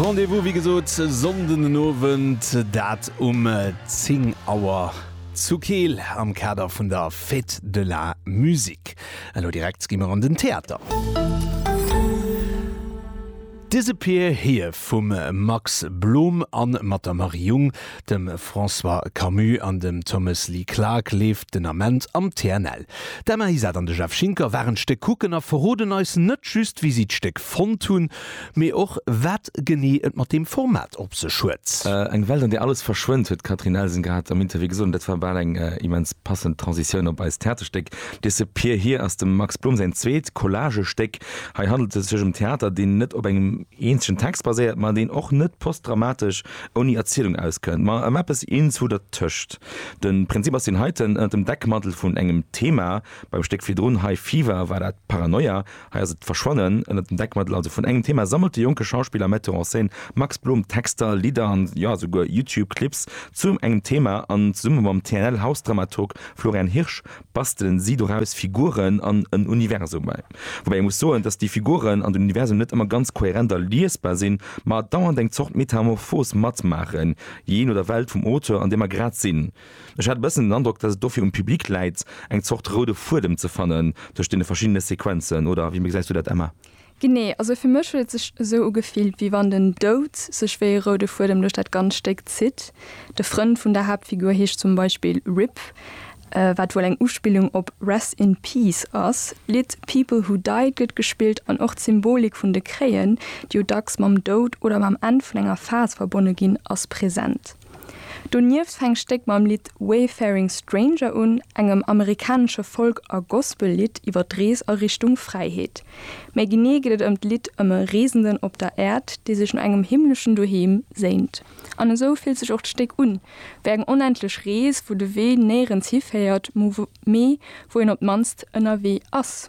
Rendez-vous wéi gesot Sonnden den Owend, dat um 10 Auer zu Keel am Kader vun der Fête de la Musique. Elo direkt gi mer an den Theater. Disappear Here vum Max Blom a mat der Marie Jung. dem François Camus an dem Thomas Lee Clarke leeft den Ament am TNL. D'Emma Isat an de Jeff Schinker waren d'Stéck kucken a verroden eis net just, wéi si d'Stéck fonnt hunn, mee och, wat genee et mat deem Format op sech huet. Eng Welt, an där alles verschwënnt, huet d'Catherine Nelson grad am Interview gesot. An dat war bal eng immens passend Transitioun op eist Theaterstéck. Disappear Here ass dem Max Blum säin zweet Collage-Stéck. Hei handelt et sech ëm Theater, deen net op engem eenzegen Text baséiert, ma deen och net postdramatesch ouni Erzielung auskënnt, ma ëm eppes eenzu dertëscht. De Prinzip ass deen heiten, ënnert dem Deckmantel vun engem Thema, beim Stéck virdrun, High Fever, war dat Paranoia, hei ass et d'Verschwannen, ënnert dem Deckmantel also vun engem Thema sammelt de jonke Schauspiller a Metteur en scène Max Blom Texter, Lidder an, jo, souguer YouTube-Clips zu engem Thema an zesumme mam TNL-Hausdramaturg Florian Hirsch, bastelen si doraus Figuren an en Universum. Woubäi ee muss soen, datt déi Figuren an den Universum net ëmmer ganz kohärent a liesbar sinn, ma dauernd eng Zort Metamorphos matmaachen, jee no der Welt vum Auteur, an deem mer grad sinn. Ech hat e bëssen den Androck, datt et dofir um Public läit, eng Zort roude Fuedem ze fannen tëscht deene verschiddene Sequenzen, oder wéi gesäis du dat, Emma? Genee, also fir mech huet et sech esou ugefillt, wéi wann den Doud sech wéi e roude Fuedem duerch dat ganzt Stéck zitt. De Frënd vun der Haaptfigur heescht zum Beispill Rip, wat wuel eng Uspillung op Rest in Peace ass. D'Lidd People Who Died gëtt gespillt an och d'Symbolik vun de Kréien, déi jo dacks mam Doud oder mam Enn vun enger Phas verbonne ginn, ass present. Donieft fänkt d'Stéck mam Lidd Wayfaring Stranger un, engem amerikanesche Folk a Gospel-Lidd iwwer d'Rees a Richtung Fräiheet. Méi genee geet et ëm d'Lidd ëm e Reesenden op der Äerd, dee sech no engem himmleschen Doheem séint. An esou fillt sech och d'Stéck un, wéi eng onendlech Rees, wou de Wee néierens hiféiert, mee wou een op d'mannst ënnerwee ass.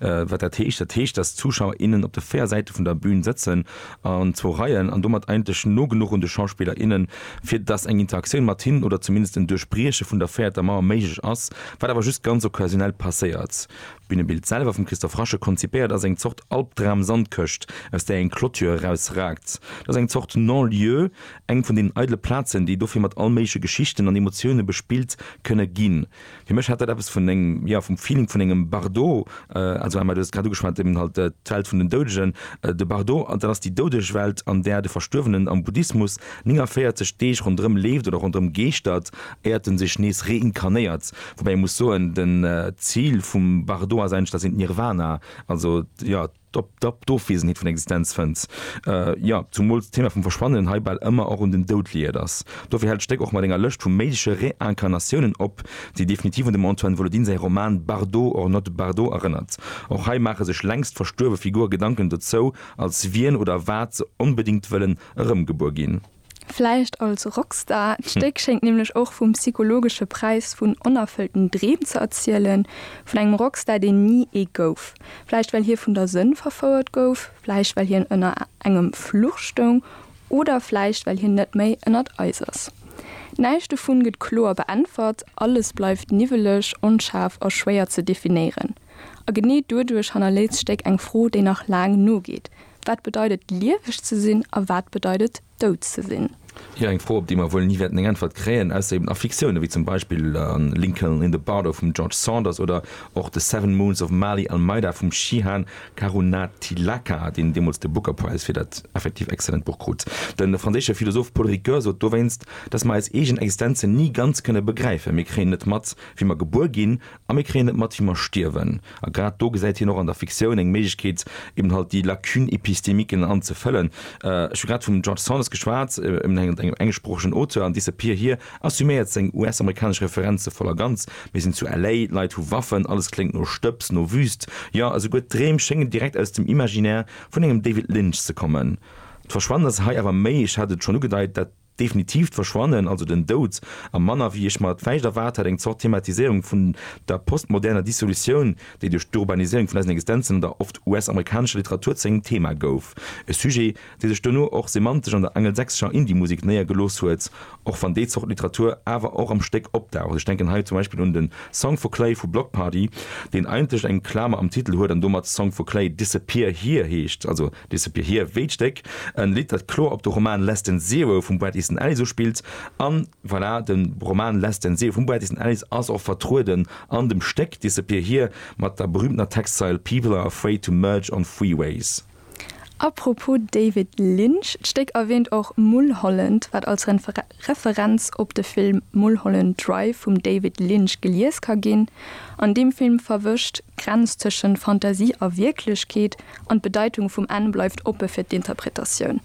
Wat dat heescht? Dat heescht, dass d'Zuschauer, innen op de véier Säite vun der Bühn sëtzen an zwou Reien an domat eigentlech no genuch un de Schauspiller, innen, fir dass eng Interaktioun mat hinnen oder zumindest en Duerchbrieche vun der véierter Mauer méiglech ass, wat awer just ganz occasionell passéiert. D'Bünebild selwer, vum Christophe Rasche konzipéiert, ass eng Zort Albdram-Sandkëscht, aus där eng Clôture erausraakt. Dat ass eng Zort Non-lieu, eng vun deenen eidele Plazen, déi dofir mat all méigleche Geschichten an Emotioune bespillt kënne ginn. Fir mech hat dat eppes vun engem, jo, vum Feeling vun engem Bardot, also Emma, du hues et grad ugeschwat, eben halt d'Welt vun den Doudegen, de Bardot, an dat ass déi doudeg Welt, an där de Verstuerwenen am Buddhismus 49 Deeg ronderëm leeft oder ronderëm geeschtert, éiert en sech nees reinkarnéiert. Woubäi ee muss soen, den Zil vum Bardot ass eigentlech, dat sinn d'Nirvana, also, jo, d'Ofwesenheet vun Existenz fënnt, jo, zumools d'Thema vum Verschwannen hei bal ëmmer och un den Doud liiert ass. Dofir hält d'Stéck och mat enger Lëscht vu méigleche Reincarnatiounen op, déi definitiv un dem Antoine Volodin säi Roman Bardot or not Bardot erënnert. Och hei maache sech längst verstuerwe Figure Gedanken dozou, als wien oder wat se onbedéngt wëllen erëmgebuer ginn. Vläicht als Rockstar, d'Stéck schéngt nämlech och vum psychologesche Präis vun onerfëllten Dreem ze erzielen, vun engem Rockstar, deen ni ee gouf. Vläicht well hie vun der Sënn verfouert gouf, vläicht well hien ënner engem Fluch stoung oder vläicht well hien net méi ënnert eis ass. Näischt dovun gëtt kloer beäntwert, alles bleift niwweleg, onschaarf a schwéier ze definéieren. A genee doduerch hannerléisst d'Stéck eng Fro, déi nach laang nogeet, Wat bedeit et, lieweg ze sinn a wat bedeit et, dout ze sinn? Jo, eng Fro, op déi mer wuel ni wäerten eng Äntwert kréien, ausser eben a Fiktioune wéi zum Beispill Lincoln in the Bardo vum George Saunders oder och The Seven Moons of Maali Almeida vum Shihan Karunatilaka, deen deemools de Booker Prize fir dat effektiv excellent Buch krut. De franséische Philosoph Paul Ricoeur sot dowéinst, dass mer eis eegen Existenzen ni ganz kënne begräifen. Mir kréien net mat, wéi mer gebuer ginn A mir kréien et mat, wéi mer stierwen. A grad do gesäit hien och an der Fiktioun eng Méiglechkeet, eben halt déi Lacune épistémique an ze fëllen. Ech hu grad vum George Saunders geschwat, eben engem englschsproochegen Auteur an Disappear hir assuméiert seng US-amerikanesch Referenze voll a ganz, Mir sinn zu LA, d'Leit hu Waffen, alles kléngt no Stëbs, no Wüst, jo, esouguer d'Dreem schéngen direkt aus dem Imaginaire vun engem David Lynch ze kommen. D'Verschwannen ass hei awer méi, ech hat et schonn ugedeit, dat. Definitiivt Verschwannen, also den Doud, a manner wéi ech mer et vläicht erwaart hat, eng Zort Thematiséierung vun der postmoderner Dissolutioun, déi duerch d'Urbaniséierung vun eisen Existenzen an der oft US-amerikanescher Literatur zu engem Thema gouf. E Sujet, dee sech duerno och semantesch an der angelsächsescher Indie-Musek néiergelooss huet, och wann déi Zort Literatur awer och am Stéck opdaucht. Ech denken hei zum Beispill un de Song for Clay vu Bloc Party, deen eigentlech eng Klamer am Titel huet an domat Song for Clay Disappear Here heescht, also Disappear Here, Wéi d'Stéck, en Lidd dat kloer op de Roman Less Than Zero vum Bret Easton Ellis uspillt, an voilà, den Roman Less Than Zero vum Bret Easton Ellis ass och vertrueden an dem Stéck Disappear Here mat der berühmtener Textzeil People are afraid to merge on freeways. Apropos David Lynch, d'Stéck erwähnt och Mulholland, wat als Referenz op de Film Mulholland Drive vum David Lynch gelies ka ginn. An deem Film verwëscht d'Grenz tëschent Fantasie a Wierklechkeet an d'Bedeitung vum Enn bleift oppe fir d'Interpretatioun.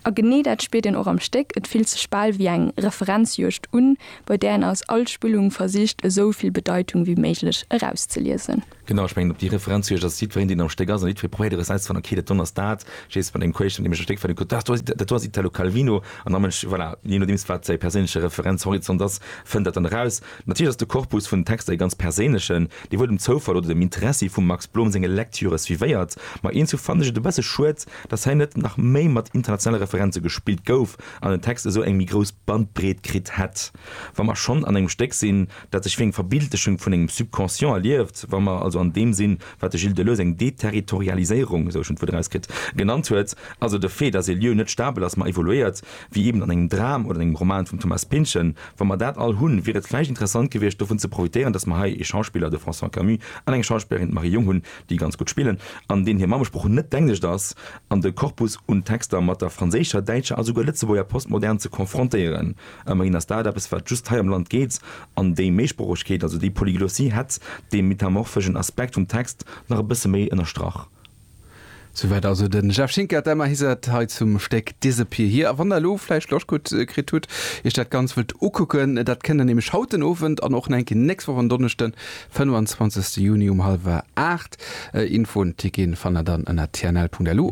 A genee dat spiert een och am Stéck, et fillt sech bal wéi eng Referenzjuegd un, bei där een aus all Spillung versicht esou vill Bedeitung wéi méiglech erauszeliesen. Genau, ech mengen op déi Referenz hu ech, dass jiddwereen deen am Stéck ass an jiddweree probéiert erauszefannen, okay dat donners dat, jees mat engem Quäerschnëtt deem ech am Stéck fannen kuckt, dat do ass, dat do ass Italo Calvino an da mënsch, voilà, jee nodeems wat säi perséinleche Referenzhorizont ass, fënnt dat dann eraus. Natierlech ass de Korpus vun den Texter ee ganz perséinlechen, dee wuel dem Zoufall oder dem Interessi vum Max Blom senge Lektüre suivéiert, ma eens u fannen ech et e besse schued, dass hei net nach méi mat internationale Referenze gespillt gouf an den Text esou eng méi grouss Bandbreet kritt hätt, wa mer schonn an engem Stéck sinn. dat sech wéi eng Verbildechung vun engem Subconscient erlieft, wa mer also an deem sinn, wat de Gilles Deleuze eng Deterritorialiséierung, esou ech en d'Wuert erauskritt, genannt huet, also de Fait, dass ee Lieu net stabel ass, ma evoluéiert, wéi eben an engem Dram oder an engem Roman vum Thomas Pynchon, wa mer dat all hunn, wier et vläicht interessant gewiescht, dovun ze profitéieren, dass mer hei ee Schauspiller, de François Camus, an eng Schauspillerin, d'Marie Jung, hunn, déi ganz gutt spillen an deen hir Mammesprooch net d'Englischt ass, an de Corpus un Texter mat der franséischer, däitscher a souguer lëtzebuerger Postmodern ze konfrontéieren. Ëmmerhin ass dat eppes, wat just hei am Land geet, an déi Méisproochegkeet, also déi Polyglossie, hätt dee metamorphegen Aspekt vum Text nach e bësse méi ënnerstrach. Souwäit also de Jeff Schinker, d'Emma Iset hei zum Stéck Disappear Here. A wann der elo vläicht Loscht gutt kritt hutt, iech dat Ganzt wëllt ukucken, dat kënnt der nämlech haut den Owend an och nach eng Kéier nächst Woch en Donneschden, 25. Juni um hallwer 8. Infoen, Ticketen fannt der dann ënner tnl.lu.